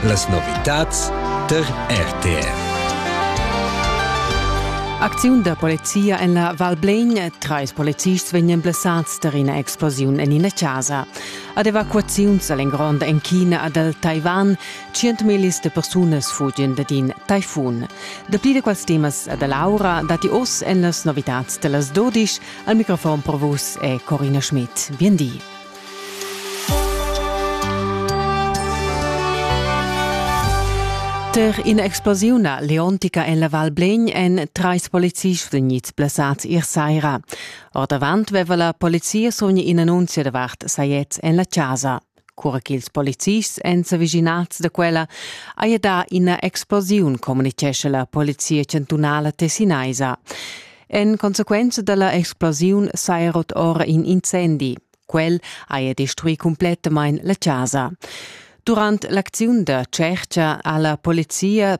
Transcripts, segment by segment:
Las novitads tar RTR. Acziun da polizia en la Val Blegn. Trais polizists vegnan blessads tar ina explosiun en ina chasa. Ad evacuaziuns a l'engrond en China e dal Taiwan. Tschientmillis de persunas fugian dad in taifun. Dapli da quels temas da Laura datti oz en las novitads da las 12. Al microfon per vus è Corina Schmidt. Bien di. Per in'explosiuna leontica en la Val Blegn èn trais policists vegnids blessads ier saira. Ordavant veva la polizia sogn in'annunzia davart sajets en la chasa. Cura ch'ils polizists èn s'avischinads da quella, haja dà ina explosiun, communitgescha la polizia chantunala tessinaisa. En consequenza dalla explosiun saja rot ora in incendi. Quel haja destruì cumplettamain la chasa. Durant l'acziun da tschercha ha la polizia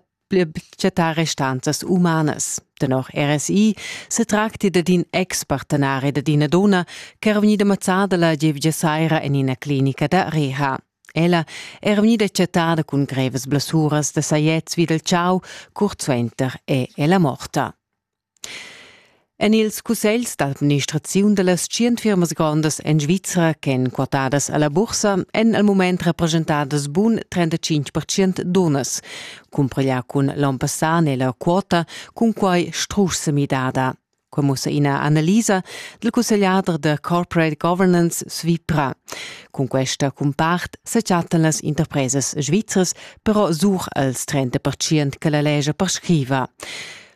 chattà restanzas umanas. Tenor RSI se tracti dad in ex-partenari dad ina donna che era vegnida mazzada la gievgia saira en ina clinica da reha. Ella era vegnida chattada cun grevas blessuras da sajets vid il chau, curt suenter è ella morta. En ils cussegls d'administraziun da las tschient firmas grondas en Svizra ch'èn quotadas a la bursa èn al mument represchentadas bun 35 percent dunnas. Cumpareglià cun l'onn passà n'è la quota cunquai strusch semidada. Quai mussa ina analisa dal cussegliader da corporate governance Svitra. Cun questa cumpart sa chattan las interpresas svizras però sur als 30 percent che la lescha prescriva.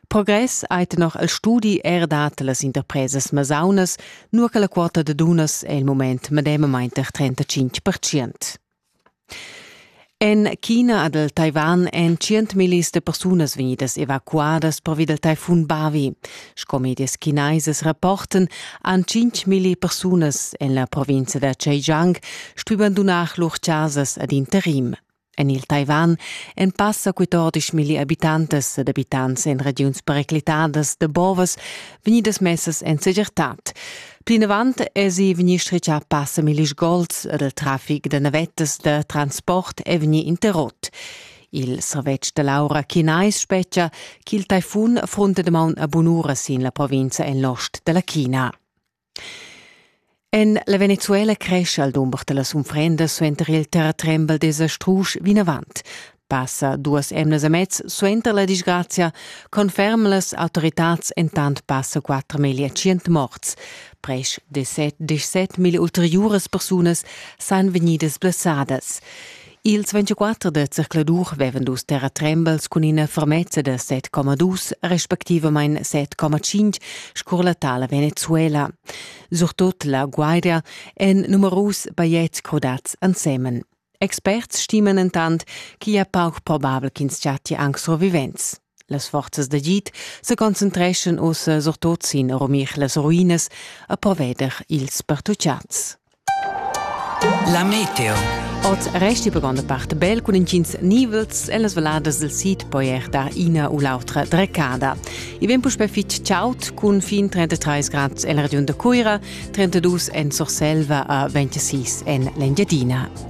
Progress ei tenor il studi era dat las interpresas masaunas, nua che la quota da dunnas è il moment medemamain tar 35 percent. En China ed el Taiwan èn tschientmillis de persunas vegnidas evacuadas pervi del taifun Bavi. Sco medias chinesas rapporten, han 5.000 persunas en la provincia da Zhejiang stuì bandunar lur chasas ad interim. En il Taiwan èn passa quatordisch milli abitantas ed abitants en regiuns periclitadas da bovas vegnidas messas en segirtad. Plinavant èsi vegnì stritgà passa milli sgols ed il traffic da navettas da transport è vegnì interrot. Il servetsch da l'aura chinais spetga ch'il taifun affrunta damaun a bunura sin la provinza en l'ost da la China. En la Venezuela crescha il dumber da las unfrendas suenter il terratrembel desa strusch vinavant. Passa duas emnas e mez suenter la disgrazia conferman las autoritads entant passa quatter meglio tschient morts. Presch de set, disset mille ulteriuras persunas san vegnidas blessadas. Ils 24 da zercladur vevan dus terratrembels cun ina fermezza da 7,2 respectivamain 7,5 scurlatà la Venezuela. Surtut la Guardia en numerus bajetgs crudats ensemen. Experts stiman entant ch'igl è pauc probabel ch'ins chattia anc survivents. Las forzas d'agid sa concentreschan ussa surtot sin rumir las ruinas e proveder ils pertucciats. La meteo. Oz resti per grande parte bel cun intgins nivels e las valadas del sid poi er dar ina u l'autra dreccada. I vem puspè fitg chaud cun fin 33 grad en la regiun da Cuira, 32 en Surselva e 26 en l'Engiadina.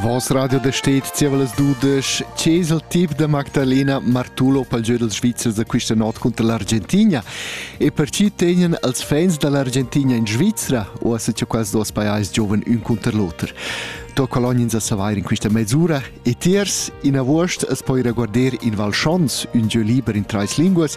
Vos radio da stet zieva las dudesch c'es il tip da Magdalena Martulo pel giö dels Svizzers da quista not cunter l'Argentigna e per chi tegnan els fans da l'Argentigna in Svizzera o as cha quels duos pajais giovan ün cunter l'oter. To colognins a savair in quista mezzura e tiers in avuost as poi reguarder in Val Schons, un giö liber in trais linguas,